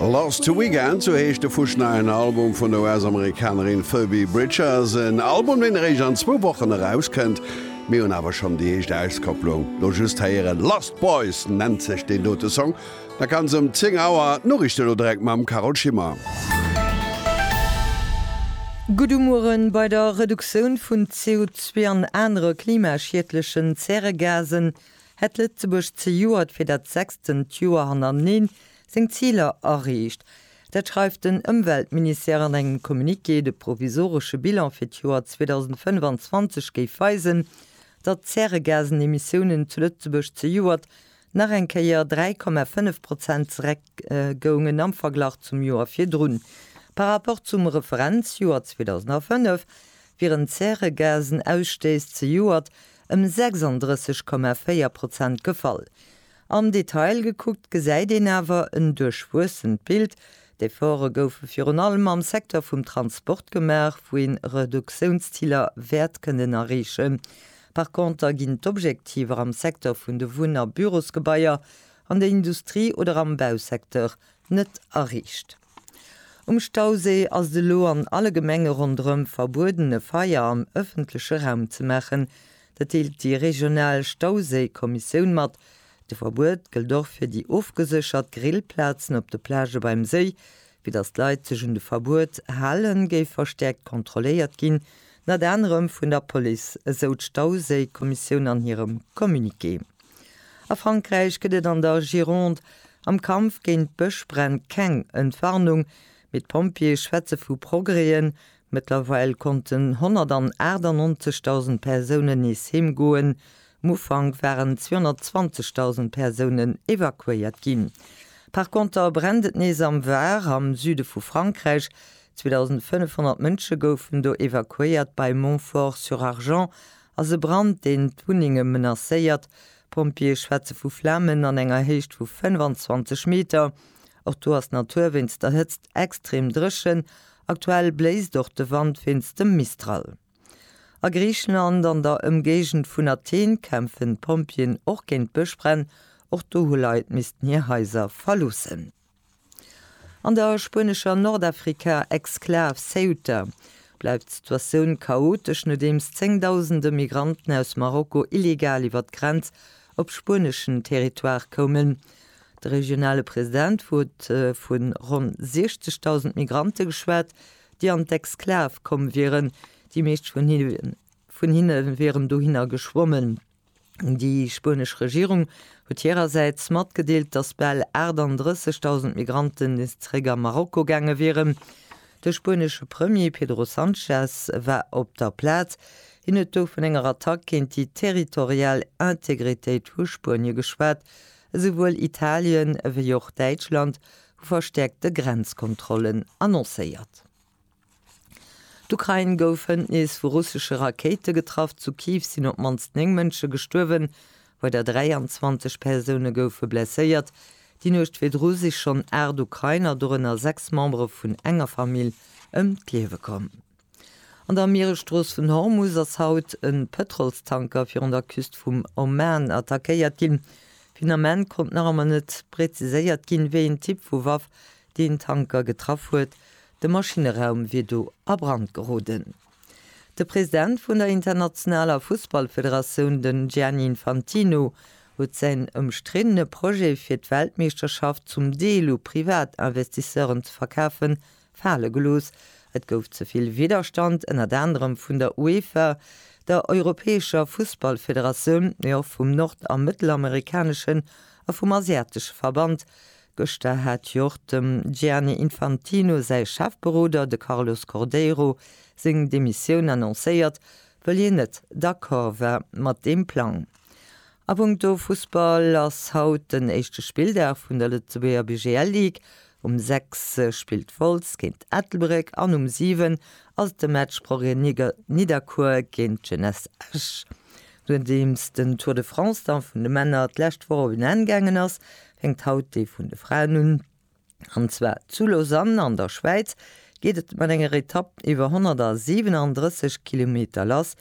Lost to Weekend, sou heescht de Fusch neien Album vun der US-Amerikanerin Phoebe Bridgers. En Album, deen eréischt an zwou Wochen erauskënnt. Mir hunn awer schonn déi éischt Auskopplung lo just héieren. Lost Boys nennt sech deen dote Song. Da kann se um 10 Auer d'Noriichten elo direkt mam Carole Schimmer. Gudde Mueren, Bei der Reduktioun vun CO2 an anere klimaschiedlechen Zäregasen hätt Lëtzebuerg zejoert fir dat sechsttent Joer hannerteneen seng Ziler erreecht. Dat schreift den Ëmweltministère an engem Communiqué. De provisoresche Bilan fir d'Joer 2025 géif weisen, datt d'Zäregasenemissiounen zu Lëtzebuerg zejoert nach eng Kéier 3,5 Prozent zeréck goungen am Verglach zum Joer virdrun. Par Rapport zum Referenzjoer 2005 wieren d'Zäregasenausstëiss zejoert ëm 36,4 Prozent gefall. Am Detail gekuckt gesäit een awer en duerchwuessent Bild. D'Efforte goufe virun allem am Secteur vum Transport gemaach, wou een Reduktiounsziler wäert kënnen erreechen. Par Conter ginn d'Objektiver am Secteur vun de Wunn a Bürosgebaier, an der Industrie oder am Bausecteur net erreecht. Um Stauséi ass et elo an alle Gemenge ronderëm verbueden, e Feier am ëffentleche Raum ze maachen. Dat deelt déi regional Stauséi-Kommissioun mat. De Verbuet gëllt och fir déi ofgeséchert Grillplazen op de Plagë beim Séi. Fir datt d'Leit sech un de Verbuet halen, géif verstäerkt kontrolléiert ginn, ënnert anerem vun der Police, esou d'Stauséi-Kommissioun an hirem Communiqué. A Frankräich gëtt et an der Gironde am Kampf géint d'Bëschbränn keng Entwarnung, mee d'Pompjeeë schwätze vu Progrèsen. Mëttlerweil konnten 198.000 Persounen nees heem goen. Um Ufank waren 220.000 Persounen evakuéiert ginn. Par Konter brennt et nees am Var, am Süde vu Frankräich. 2.500 Mënsche goufen do evakuéiert bei Montfort-sur-Argens ass e Brand, deen d'Wunnenge menacéiert. D'Pompjeeë schwätze vu Flamen an enger Héicht vu 25 Meter. Och do ass d'Natur wéinst der Hëtzt extrem dréchen. Aktuell bléist och de Wand wéinst dem Mistral. A Griichenland an der Ëmgéigend vun Athen kämpfen d'Pompjeeën och géint Bëschbränn. Och do hu Leit missten hir Haiser verloossen. An der spuenescher Nordafrika-Exklav Ceuta bleift d'Situatioun chaotesch, nodeems zéngdausende Migranten aus Marokko illegal iwwer d'Grenz op spueneschen Territoire koumen. De regionale President huet vu ronn 60.000 Migrante geschwat, déi an d'Exklav komm wieren. Déi meescht vun hinne wieren dohinner geschwommen. Déi spuenesch Regierung huet hirersäits matgedeelt, datt bal 38.000 Migranten nees zeréck a Marokko gaange wieren. De spuenesche Premier Pedro Sanchez war op der Plaz. Hien huet do vun enger Attack géint déi territorial Integritéit vu Spuenie geschwat. Esouwuel Italien ewéi och Däitschland hu verstäerkte Grenzkontrollen annoncéiert. D'Ukrain gouf hënt nees vu russesche Rakéite getraff. Zu Kiew sinn op d'mannst 9 Mënsche gestuerwen, weider 23 Persoune goufe blesséiert. Déi Nuecht virdru si schonn 8 Ukrainer, dorënner 6 Membere vun enger Famill, ëm d'Liewe komm. An der Mieresstrooss vun Hormus ass haut e Pëtrolstanker virun der Küst vum Oman attackéiert ginn. Vun Ament konnt nach ëmmer net preziséiert ginn, wéi een Typ vu Waff deen Tanker getraff huet, de Maschinneraum wier do a Brand geroden. De President vun der internationaler Fussballfederatioun, den Gianni Infantino, huet säin ëmstriddene Projet fir d'Weltmeeschterschaft zum Deel u Privatinvestisseuren ze verkafen, fale gelooss. Et gouf ze vill Widderstand, ënnert anerem vun der UEFA, der europäescher Fussballfederatioun, mee och vum nord a mëttelamerikaneschen a vum asiatesche Verband, Gëschter hat jo och dem Gianni Infantino säi Chefberoder, de Carlos Cordeiro, seng Demissioun annoncéiert, wëll hien net d'accord war mat deem Plang. A punkto Fussball ass haut den éischte Spilldag vun der Lëtzebuerger BGL Ligue. Um 6 spillt Wolz géint Ettelbréck an um 7 ass de Match Broglie-Nidderkuer géint d'Jeunesse Esch. Nodeems den Tour de France-Dampf vun de Männer d'lescht Woch op en Enn gaangen ass, Fänkt haut dee vun de Fraen un. An zwar zu Lausanne an der Schwäiz geet et mat enger Etapp iwwer 137 Kilometer lass.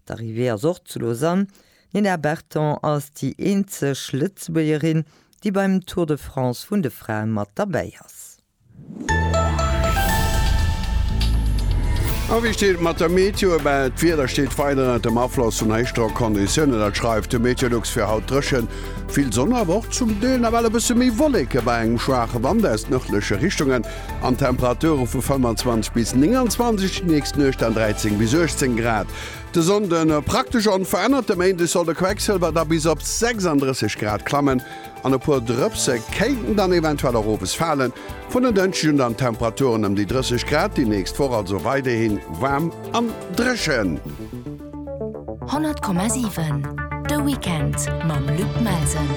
D'Arrivée ass och zu Lausanne. D'Nina Berton ass déi eenzeg Lëtzebuergerin, déi beim Tour de France vun de Frae mat derbäi ass. A wéi steet et mat der Meteo? Ebaa et Wieder steet weider ënnert dem Afloss vun Héichdrockconditiounen. Dat schreift de Meteolux. Fir haut dréchen, vill Sonn awer och zum Deel nawell e bësse méi Wolleke bei engem schwaache Wand aus nërdleche Richtungen an Temperature vu 25 bis 29 déi nächst Nuecht an 13 bis 18 Grad. De Sonnde praktesch onverännert. De Méinde soll de Quecksëlwer da bis op 36 Grad klammen. An e puer Drëpse kéinten dann eventuell och owes falen. Vun en Dënschdeg un dann Temperaturen ëm déi 30 Grad, déi nächst Woch also weiderhi waarm an dréchen. 100,7 De Weekend mam Luc Melsen.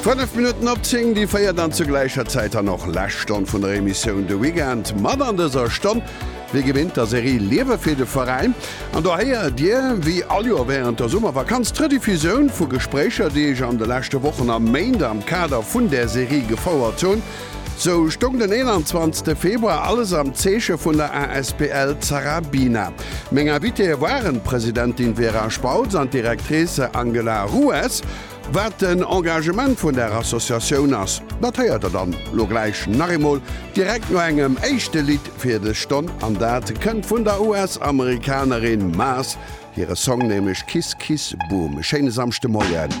Fënnef Minutten op zéng déi véiert an zur gläicher Zäit dann och lescht Stonn vun der Emissioun De Weekend mat an dëser Stonn Wéi gewinnt der Serie Liewe fir de Veräin an do héiert Dir wéi all Joer wärend der Summervakanz d'Rediffusioun vu Gespréicher déi ech an de leschte Wochen a Méint am Kader vun där Serie gefouert hunn. Sou stoung den 21 Februar alles am Zeeche vun der asbl Zarabina. Meng Invitéë waren d'Presidentin Vera Spautz an d'Directrice Angela Rues. Wat den Engagement vun der Associatioun ass, dat héiert der dann lo gläich nach eemol direkt no engem éischte Lidd fir dës Stonn an dat kënnt vun der US-Amerikanerin Maas hire Song, nämlech Kiss Kiss Boom. E schéine Samschdemoien.